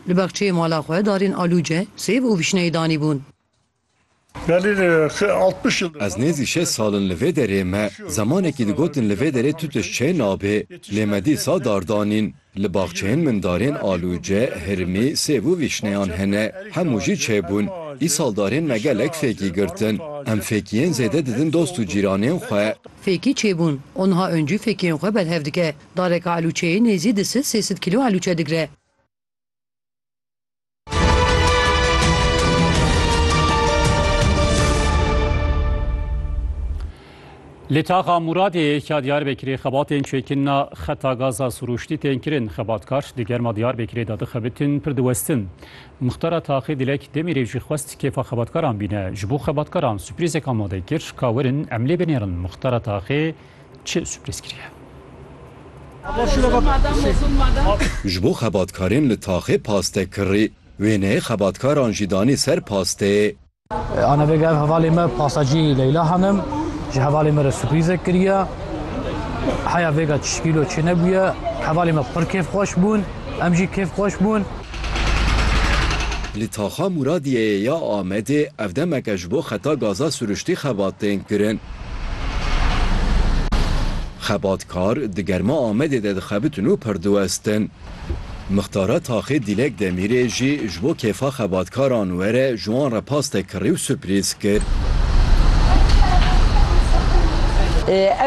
Li baxçeyê mala xwe darên alûce, sêv û vişneyê danîbûn. Ez nêzî şeş sal in li vê derê me zemanekî digotin li vê derê tu tişt çê nabê, lê me dîsa dar danîn. Li baxçeyên min darên alûce, hirmî, sêv û vişneyan hene. Hemû jî çê bûn. Îsal darên me gelek fêkî girtin. Em fêkiyên zêde didin dost û cîranên xwe. Fêkî çê bûn û niha Öncü fêkiyên xwe berhev dike. Dareka alûçeyê nêzî di sid sê sid kîlo alûçe digre. Li taxa Muradê ya Diyarbekirê xebatên çêkirina xeta gaza sirûştî tên kirin. Xebatkar di germa Diyarbekirê de dixebitin pir diwestin. Muxtara taxê Dilek Demîrê jî xwest kêfa xebatkaran bîne. Ji bo xebatkaran suprîzek amade kir ka werin em lê binêrin. Muxtara taxê Çi sürpriz kiriye? Ji bo xebatkarên li taxê paste kirî, wêneyê xebatkaran jî danî ser pasteyê. Ana bêga ev hevalê me pastacî Leyla Hanim ji hevalê me re sürprîzek kiriye. Heya vêga çi kîlo çi nebûye. Hevalê me pir kêfxweş bûn, em jî kêfxweş bûn. Li taxa Mûradiyeyê ya Amedê ev demeke ji bo xeta gaza siruştî xebat tên kirin. Xebatkar di germa Amedê de dixebitin û pir diwestin. Mixtara taxê Dîlek Demîrê jî ji bo kêfa xebatkaran were ji wan re paste kirî û suprîz kir.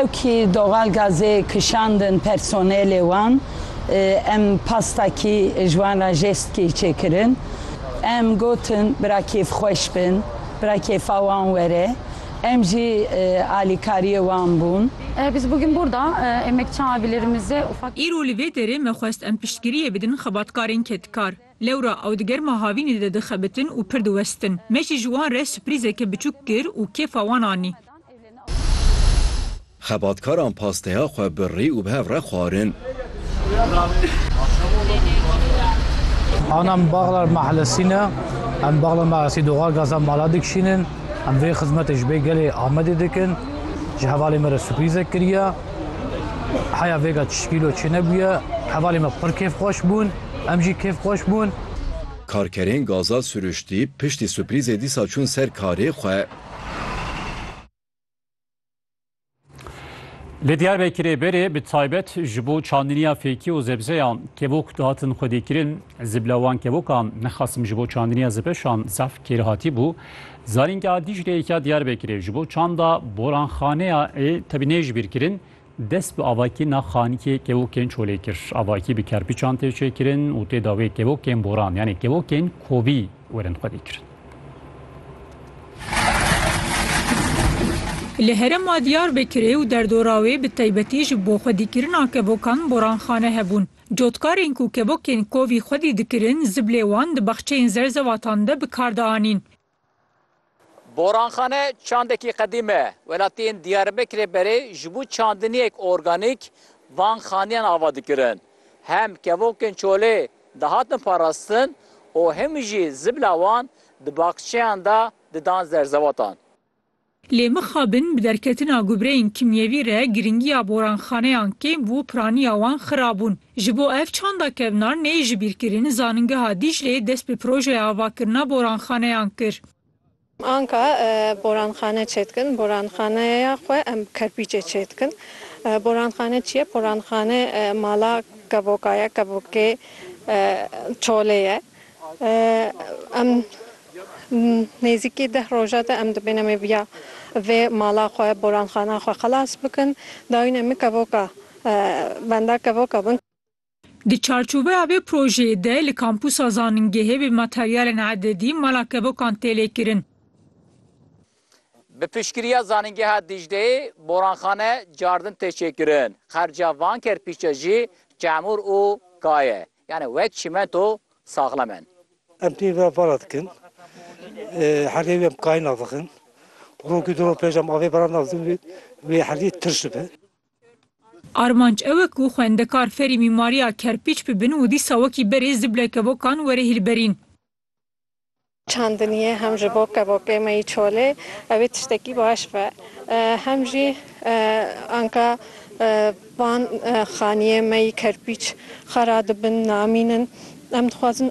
Ew kî doxal gazê kişandin personelê wan. Em pasta kî ji wan re jest kî çêkirin. Em gotin bira kêfxweş bin, bira kêfa wan were. Em jî alîkariyê wan bûn. Biz bugün burda emekçi abilerimize ufak. Îro li vê derê me xwest em piştgiriyê bidin xebatkarên kedkar. Lewra ew di germa havînê de dixebitin û pir diwestin. Me jî ji wan re suprîzeke biçûk kir û kêfa wan anî. Xebatkaran pasteya xwe bi rî û bi hev re xwarin. An em Baglar Mahlesî ne. Em Baglar Mahlesî doxar gaza mala dikişînin. Em vê xizmetê ji vê gelê Amedê dikin. Ji hevalê me re surprîzek kiriye. Heya vêga çi şkîlo çi nebûye. Hevalê me pir kêfxweş bûn. Em jî kêfxweş bûn. Karkerên gaza siruştî piştî surprîzê dîsa çûn ser karê xwe. Li Diyarbekirê berê bi taybet ji bo çandiniya fêkî û zebzeyan kevok dihatin xwedîkirin. Zibla wan kevokan nexasim ji bo çandiniya zibeşan zaf kêr hatî bû. Zanîngeha Dîcleyê ya Diyarbekirê ji bo çanda boranxaneya ê tevî nê ji bîr kirin dest bi avakîna xanikê kevokên çolê kir. Avakî bi kerpiçan tê çêkirin û tê da wê kevokên boran yanê kevokên kovî werin xwedîkirin. Li herêma Diyarbekirê û derdora wê bi taybetî ji bo xwedîkirina kevokan boranxane hebûn. Cotkarên ku kevokên kovî xwedî dikirin ziblê wan di baxçeyên zerzewatan de bi kar de anîn. Boranxane çandekî qedîm e. Welatiyên Diyarbekirê berê ji bo çandiniyek organîk van xaniyan ava dikirin. Hem kevokên çolê dihatin parastin û hemû jî zibla wan di baxçeyan de didan zerzewatan. Lê mixabin bi derketina gubreyên kimyevî re girîngiya boranxaneyan kêm bû û piraniya wan xirab bûn. Ji bo ev çanda kevnar neyê jibîrkirin, Zaningeha Dîcleyê dest bi projeya avakirina boranxaneyan kir. Anka poranxane çêdikin, poranxaneya xwe em bi kerpîçê çêdikin. Poranxane çi ye? Poranxane mala kevoka ye, kevokê çolê ye. Em nêzîkî deh roja de em dibêne em ê viya vê mala xwe, poranxana xwe xilas bikin. Dayûnê min kevoka benda kevoka bin. Di çarçoveya vê projeyê de li Kampûsa Zanîngehê bi materyalên ededî mala kevokan tê lêkirin. Bi piştgiriya Zanîngeha Dîcleyê boranxane, cardin tê çêkirin. Xerca van kerpîçe jî çemûr û ka ye. Yanî wek çîmento saxlem in. Em pê ve vala dikin. Helê wê em kayê nav dixin. Rokî du roj pêş em avê bira nav dixin wê helê tirş dibe. Armanc ew e ku xwendekar ferî mîmariya kerpîç bibin û dîsa wekî berê zible kevokan were hîlberîn. Çandiniyê hem ji bo kevokê me yî çolê ew ê tiştekî baş be hem jî anka van xaniyê me yî kerpîç xwe radibin, namînin. Em dixwazin